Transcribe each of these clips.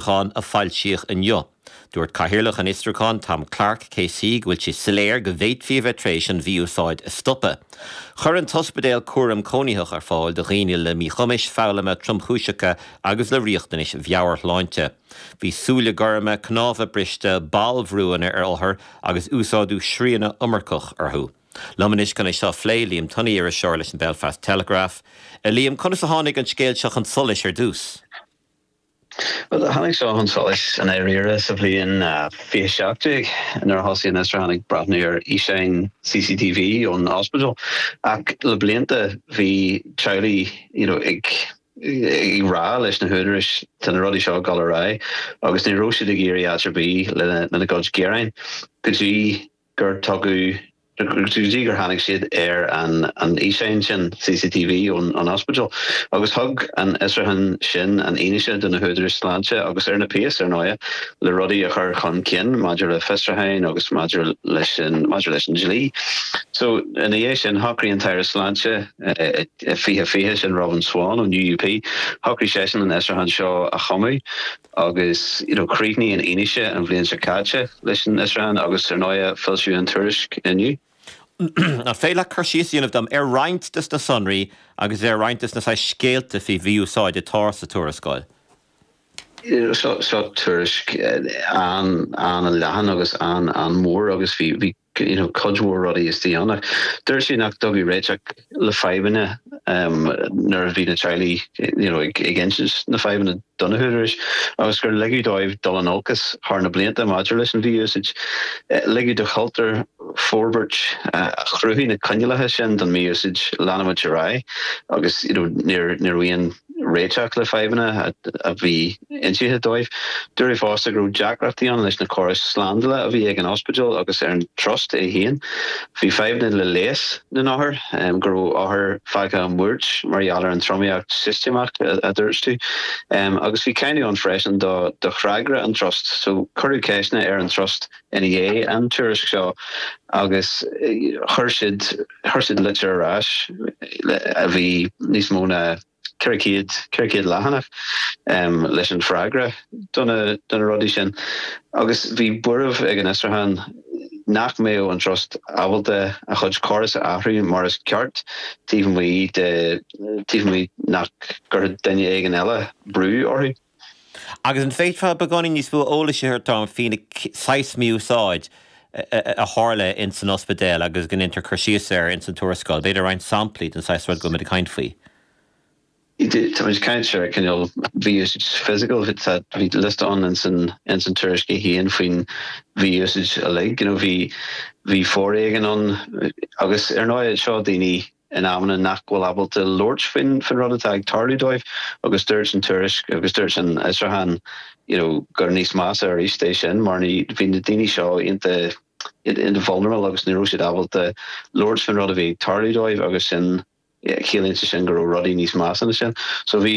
Fhiosrúcháin a foilsíodh inniu. Dúirt Cathaoirleach an Fhiosrúcháin, Tom Kark KC go bhfuil sé soiléir go bhféadfaí a bheith tar éis an mhí-úsáid a stopadh. Chuir an t-ospidéal cúram cónaitheach ar fáil do dhaoine le míchumais foghlama tromchúiseacha agus le riachtanais mheabhairshláinte. Bhí súile gorma, cnámha briste, ballbhrúanna ar othair agus úsáideadh srianadh iomarcach orthu. Liom anois chun é seo a phlé, Liam Tunney, iriseoir leis an Belfast Telegraph. A Liam, conas a tháinig an scéal seo chun solais ar dtús? Bhuel, tháinig seo chun solais i ndáiríre sa bhliain 2017 nuair a thosaigh an Fhiosrúchán ag breathnú ar fhíseáin CCTV ón ospidéal, ach le blianta bhí teaghlaigh you know ag rá leis na húdaráis tá na rudaí seo ag dul ar aghaidh agus ní raibh siad ag éirí áit ar bith lena gcuid gearáin go dtí gur tugadh, go dtí gur tháinig siad ar an fhíseáin sin CCTV ón ospidéal, agus thug an fhiosrúchán sin an fhianaise do na húdaráis sláinte, agus ar na péas, ar ndóigh, le rudaí a chur chun cinn maidir le fiosrúcháin agus maidir leis an, maidir leis an dlí. So, ina dhiaidh sin, shocraigh an tAire Sláinte, i fiche fiche, sin Robin Swann ón UUP, shocraigh seisean an fhiosrúchán seo a chumadh. Agus, you know, chríochnaigh an fhianaise an bhliain seo caite leis an fhiosrúchán agus, ar ndóigh, foilsíodh an tuairisc inniu. An féidir leat cur síos a dhéanamh dom ar roinnt de sna sonraí agus ar roinnt de sna saghas scéalta faoi mhí-úsáid atá sa tuarascáil? Seo tuairisc an-leathan agus an-mhór agus bhí you know, cuid mhór rudaí istigh ann ach dúirt sí nach dtugadh réiteach le fadhbanna nuair a bhí na teaghlaigh you know, ag, ag insint na fadhbanna do na húdaráis agus gur ligeadh dóibh dul in olcas thar na blianta maidir leis an mhí-úsáid. Ligeadh do chultúr forbairt a chruthaigh na coinníollacha sin don mhí-úsáid leanúint ar aghaidh agus you know, níor, ní raibh aon réiteach le fadhbanna a bhí inste dóibh. Dúradh fosta go raibh deacrachtaí ann leis na córais slándála a bhí ag an ospidéal agus ar an trust é féin. Bhí fadhbanna le leigheas na n-othar, go raibh othair fágtha i mbuairt mar gheall ar an tromaíocht shistéamach, a dúirt tú. Agus bhí cáineadh ann freisin do fhreagra an trust. So cuireadh ceisteanna ar an trust. ina dhiaidh an tuairisc seo agus chuir siad chuir siad litir ar ais a bhí níos mó ná ceithre chéad ceithre chéad leathanach leis an freagra do na do na rudaí sin agus bhí buaireamh ag an fhiosrúchán nach mbeadh an trust ábalta a chuid córas a athrú mar is ceart taobh amuigh de taobh amuigh nach gcuirfeadh duine éigin eile brú orthu Agus an bhféadfá beagáinín níos mó eolas a thabhairt dom faoin saghas mí-úsáid a tharla in san ospidéal agus go ndéantar cur síos air in san tuarascáil? B'fhéidir roinnt samplaí den saghas rud go bhfuimid ag caint faoi? Táimid ag caint ar cineál mí-úsáid physical, bhí liosta ann in san in san tuairisc é féin faoin mhí-úsáid uilig, you know, bhí bhí foréigean ann agus ar ndóigh seo daoine, in amanna nach bhfuil ábalta labhairt faoin rud atá ag tarlú dóibh agus dúirt an Tuairisc agus dúirt an fhiosrúchán you know gur níos measa arís é sin mar bhí na daoine seo iontach vulnerable agus ní raibh siad ábalta labhairt faoin rud a bhí ag tarlú dóibh agus sin chiallaíonn sé sin go raibh rudaí níos measa na sin so bhí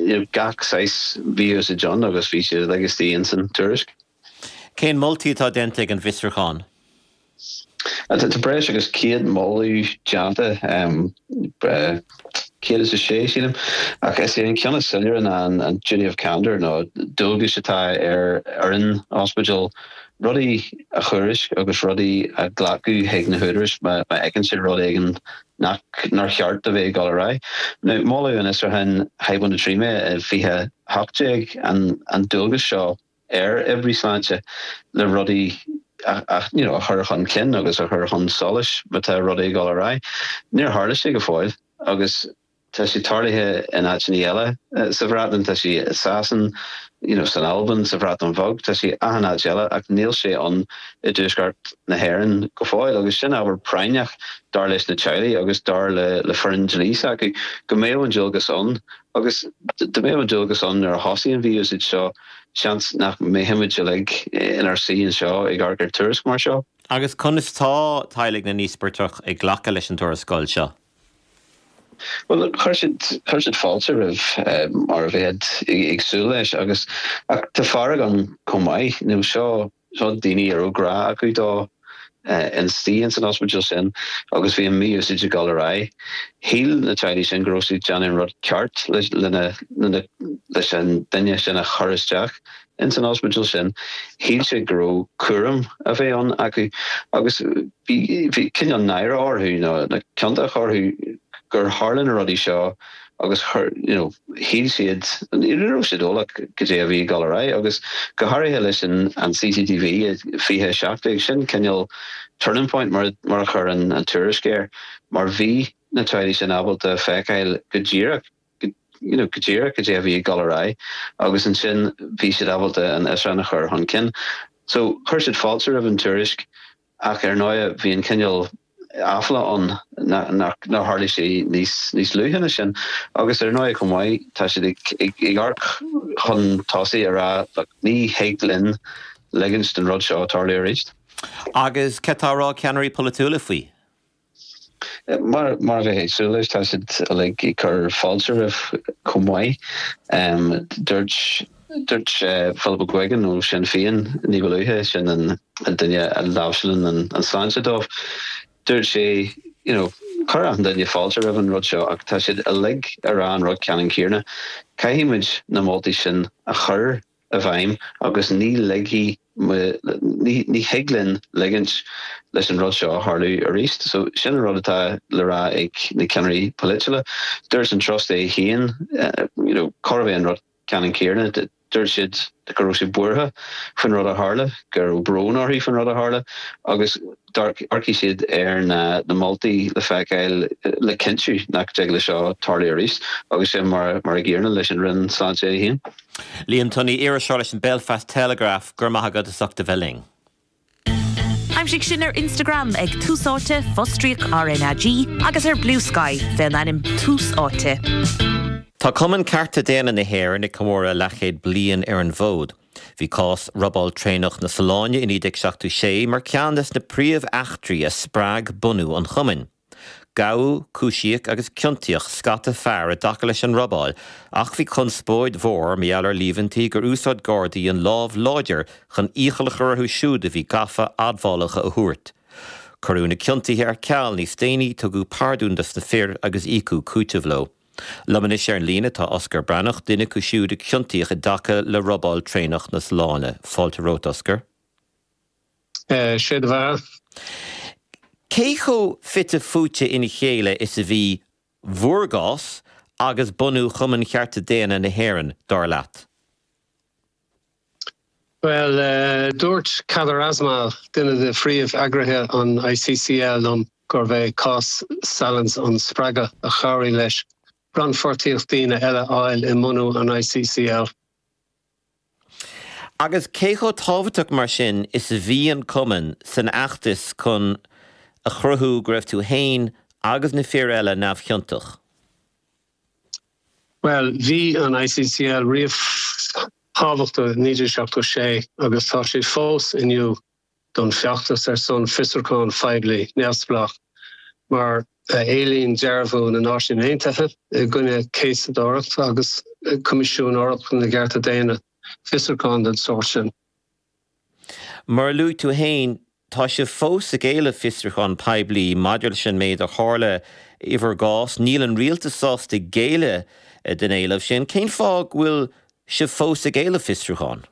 you know, gach saghas mí-úsáid ann agus bhí siad luaite insan Tuairisc. Cén moltaí atá déanta ag an bhfiosrúchán? Tá breis agus céad moladh déanta, 106 sílim, ach is é an ceann is soiléire ná an duty of candour nó dualgas atá ar fhoireann ospidéil rudaí a thuairisc agus rudaí a ghlacadh chuig na húdarais má fheiceann siad rud éigin nach nár cheart a bheith ag dul ar aghaidh. Now mhol an fiosrúchán hyponatraemia 2018 an dualgas seo ar oibrithe sláinte le rudaí a chur chun cinn agus a chur chun solais má tá rudaí ag dul ar aghaidh. Níor tharla sé go fóill agus tá sé tarlaithe in áiteanna eile sa Bhreatain, tá sé i Sasana, san Albain, sa Bhreatain Bheag, tá sé achan áit eile ach níl sé ann i dTuaisceart na hÉireann go fóill agus sin ábhar práinneach dar leis na teaghlaigh agus dar le foireann dlí s'acu, go mbeadh an dualgas ann. Agus dá mbeadh an dualgas ann nuair a thosaigh an mhí-úsáid seo, seans nach mbeadh muid uilig inár suí anseo ag amharc ar tuairisc mar seo. Agus conas atá teaghlaigh na n-íospartach ag glacadh leis an tuarascáil seo? Bhuel, chuir siad, chuir siad fáilte roimhe mar a bheifeá ag súil leis, agus, ach tá fearg ann chomh maith. Nó seo Tá daoine a raibh grá acu dóibh ina suí ins an ospidéal sin agus bhí an mí-úsáid ag dul ar aghaidh. Shíl na teaghlaigh sin go raibh siad ag déanamh an rud ceart lena leis an duine sin a chur isteach ins an ospidéal sin. Shíl siad go raibh cúram a bheith ann acu agus bhí cineál náire orthu, nó ciontacht orthu, gur tharla na rudaí seo agus chuir, you know, shíl siad, ní raibh siad eolach goidé a bhí ag dul ar aghaidh, agus go háirithe leis an an CCTV 2017, sin cineál turning point mar a, mar a chuir an an tuairisc air, mar bhí na teaghlaigh sin ábalta feiceáil go díreach, you know, go díreach goidé a bhí ag dul ar aghaidh, agus ansin bhí siad ábalta an fhiosrúchán a chur chun cinn. So, chuir siad fáilte roimh an tuairisc, Ach ar ndóigh bhí an cineál aiféala ann nár tharla sé níos níos luaithe ná sin. Agus ar ndóigh chomh maith tá siad ag amharc chun tosaigh, ag rá look, ní thig linn ligint don rud seo tarlú arís. Agus céard atá á rá ag ceannairí polaitiúla faoi? Mar a bheifeá ag súil leis, tá siad uilig ag cur fáilte roimhe chomh maith. Dúirt dúirt Philip McGuigan ó Sinn Féin ní ba luaithe, sin an duine a láimhseálann an tsláinte dóibh, dúirt sé you know chuir achan duine fáilte roimh an rud seo ach tá siad uilig ag rá an rud ceannann céanna, caithfidh muid na moltaí sin a chur i bhfeidhm agus ní lig, ní thig linn ligint leis an rud seo tarlú arís. So sin an rud atá le rá ag na ceannairí polaitiúla. Dúirt an Trust é féin, you know, gurbh é an rud ceannann céanna, dúirt siad go raibh siad buartha faoin rud a tharla, go raibh brón orthu faoin rud a tharla agus amharcfaidh siad ar na moltaí le feiceáil le cinntiú nach dtig leis seo tarlú arís agus is é mar an gcéanna leis an Roinn Sláinte í féin. Liam Tunney, Iriseoir leis an Belfast Telegraph, Go raibh maith agat as ucht a bheith linn. Aimsigh sinn ar Instagram ag Tús Áite, fostríoc RnaG, agus ar Bluesky, fé an ainm Tús Áite. Tá Cumann Cearta Daonna na hÉireann ag comóradh leathchéad bliain ar an bhfód. Bhí cás robáil traenach na Sollán i 1976 mar cheann des na príomh-eachtraí a spreag bunú an Chumainn. Gabhadh, cúisíodh agus ciontaíodh scata fear i dtaca leis an robáil ach bhí conspóid mhór mar gheall ar líomhaintí gur úsáid Gardaí an lámh láidir chun iachall a chur orthu siúd a bhí gafa admhálacha a thabhairt. Cuireadh na ciontuithe ar ceal níos déanaí, tugadh pardún dos na fir agus íocadh cúiteamh leo. Liom anois ar an líne tá Osgur Breathnach, duine acu siúd a ciontaíodh i dtaca le robáil traenach na Sollán. Fáilte romhat, Osgur. Sé do bheatha. Cé chomh fite fuaite ina chéile is a bhí bhúr gcás agus bunú Chumann Chearta Daonna na hÉireann, dar leat? Bhuel, dúirt Kader Asmal, duine de phríomh-eagraithe an ICCL, liom gurbh é cás Sallins an spreagadh a chabhraigh leis rannpháirtíocht daoine eile a fháil i mbunú an ICCL. Agus cé chomh tábhachtach mar sin is a bhí an Cumann san fheachtas chun a chruthú go raibh tú fhéin agus na fir eile neamhchiontach? Bhuel, bhí an ICCL riamh tábhachtach i 1976 agus tá siad fós inniu. don feachtas ar son fiosrúchán poiblí neamhspleách, mar a éilíonn Dearbhú na Náisiún Aontaithe i gcoinne Céasadóireacht agus Coimisiún Eorpach na gCearta Daonna fiosrúchán den sórt sin. Mar a luaigh tú féin, tá sibh fós ag éileamh fiosrúchán poiblí maidir leis an méid a tharla i bhur gcás. Níl an rialtas sásta géilleadh don éileamh sin. Cén fáth go bhfuil sibh fós ag éileamh fiosrúchán?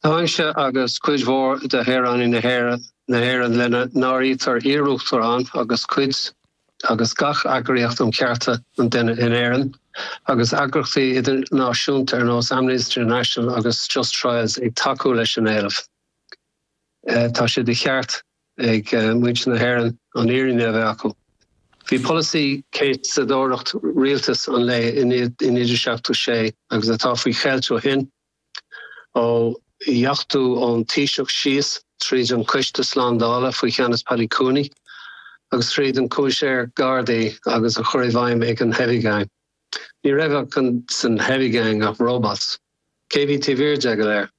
Táimse agus cuid mhór de shaoránaigh na hÉireann, lena n-áirítear iarUachtarán agus cuid agus gach eagraíocht um chearta an duine in Éirinn, agus eagraíochtaí idirnáisiúnta ar nós Amnesty International agus Just Trials ag tacú leis an éileamh. Tá sé de cheart ag muintir na hÉireann an fhírinne a bheith acu. Bhí polasaí céasadóireacht rialtas an lae i 76 agus atá faoi cheilt ó shin. Ó dheachtú ón Taoiseach síos tríd an Coiste Slándála faoi cheannas Paddy Cooney agus tríd an Coimisinéir Gardaí agus á chur i bhfeidhm ag an Heavy Gang. Ní raibh ach an san Heavy Gang ach robots. Cé bhí taobh thiar de go léir?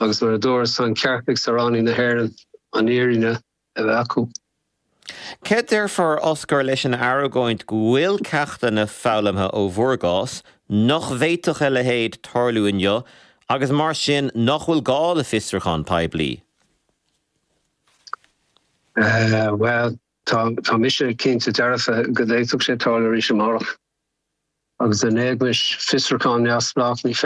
Agus mar a dúras, tá an ceart ag saoránaigh na hÉireann an fhírinne a bheith acu. Céard a déarfá Osgur leis an argóint go bhfuil ceachtanna foghlamtha ó bhur gcás, nach bhféadfadh a leithéid tarlú inniu agus mar sin nach bhfuil gá le fiosrúchán poiblí? Bhuel, tá mise cinnte dearfa go bhféadfadh sé tarlú arís amárach. Agus in éagmais fiosrúchán neamhspleách, ní féidir.